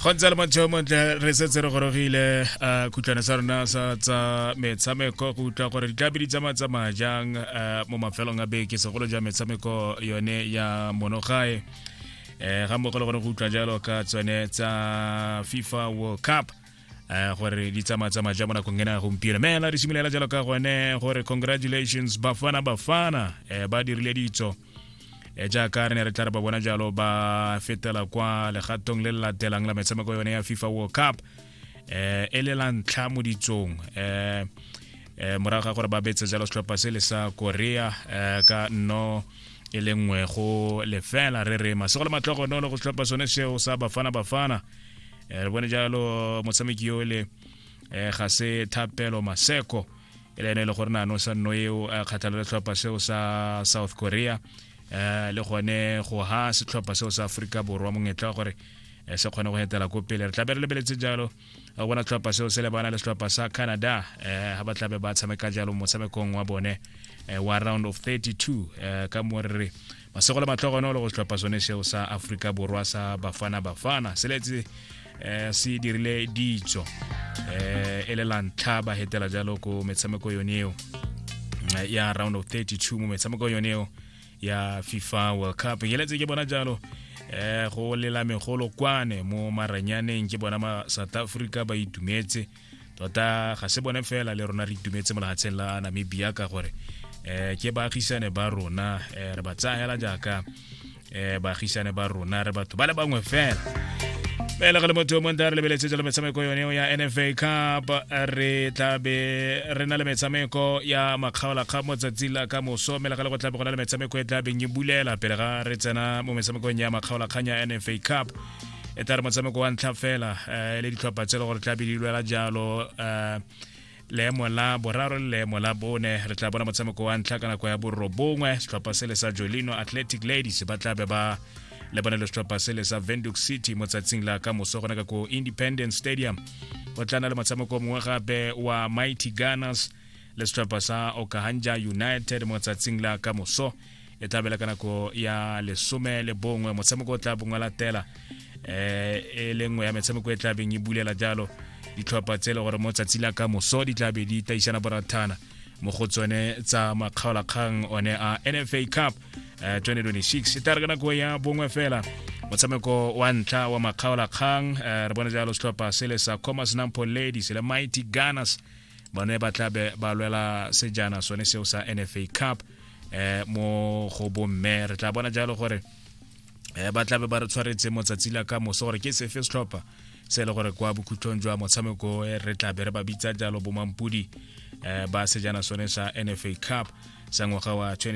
go ntse le motho yo montle re setse re gorogile um khutlwana sa rona sa tsa metshameko go utlwa gore ditlabe di tsamaya tsamaya jang um mo mafelong a beke segolo jang metshameko yone ya monogae um ga mmogo le gone go utlwa jalo ka tsone tsa fifa world cup um gore di tsamaya tsamaya jang mo nakong ena ya gompieno mela re simolola jalo ka gone gore congratulations bafana bafana um ba dirile ditso e jaaka re ne re tla re ba bona jalo ba fetela kwa legatong le le latelang la metshameko yone ya fifa world cup eh e le la ntlha mo ditsong eh eh morago ga gore ba betse jalo setlhopha se le sa korea eh, ka no e le nngwe go lefela re re masego le matlhogonolo go setlhopha sone seo sa bafana bafana eh, re bone jalo motshameki yo le eh, ga se thapelo maseko e le ene e le gore nano sa nno eo a kgatlhela letlhopha seo sa south korea um le gone go ha setlhopha seo sa aforika borwa mongetla gore eh, se kgone go etela ko pele re tlabe re lebeletse jalo go bona tlhopha seo se lebana le setlhopha sa canada um ga ba tlabe ba tshameka jalo motshamekong wa bone wa round of 32 um ka mo re re masego le matlogonolo go setlhopha sone seo sa aforika borwa sa bafana bafana se letse eh, se dirile ditso eh, e le lantlha ba hetela jalo ko metshameko yone eo eh, ya round of 32 mo metshameko yone eo ya fifa world cup ke letse ke bona jalo eh go lela megolo kwane mo maranyaneng ke bona ma south africa ba itumetse tota ga se bone fela le rona re itumetse mo legatsheng la namibia ka gore um ke baagisane ba rona um re ba tsayela jaaka um baagisane ba rona re batho ba le bangwe fela fela ga le motho yo monta re lebeletse jalo metshameko yone ya nfa cup re tlabe re na le metshameko ya makgaolakga mo tsatsing la ka moso mme le ga le go tlabe go na le metshameko e tlabeng e bulela pele ga re tsena mo metshamekong ya makgaolakgang ya nfa cup e tla re motshameko wa ntlha fela um le ditlhopha tse le gore tla be di lwela jalo um leemo la boraro le leemo la bone re tla bona motshameko wa ntlha ka nako ya borobongwe setlhopha se le sa jolino athletic ladies ba tla be ba le bone le setlhopha se le sa venduk city mo tsatsing la ka moso gone ka ko independence stadium go tlana le motshameko mongwe gape wa mighty gunners le setlhopha sa okahandja united mo tsatsing la ka moso e tla bela ka nako ya lesome le bongwe motshameko o tla bongwe latela eh, e le nngwe ya metshameko e tla beng e bulela jalo ditlhopha tse e le gore mo tsatsi la ka moso di tla be di taisana borathana mo go tsone tsa makgaolakgang one a nfa cup 2026 eh, e tla re ka nako ya bongwe fela motshameko wa ntlha wa makgaolakgang eh, re bone jalo setlhopha se le sa comas nampo ladies le mighty gunners bone ba tla be ba lwela sejana sone seo sa nfa cup eh mo go bomme re tla bona jalo gore eh ba tlabe ba re tshwaretse motsatsi la ka moso gore ke sefe setlhopha se e le gore kwa bokhutlhong jwa motshameko eh, re tlabe re ba bitsa jalo bomampudi eh ba sejana sone sa nfa cup sa ngwaga wa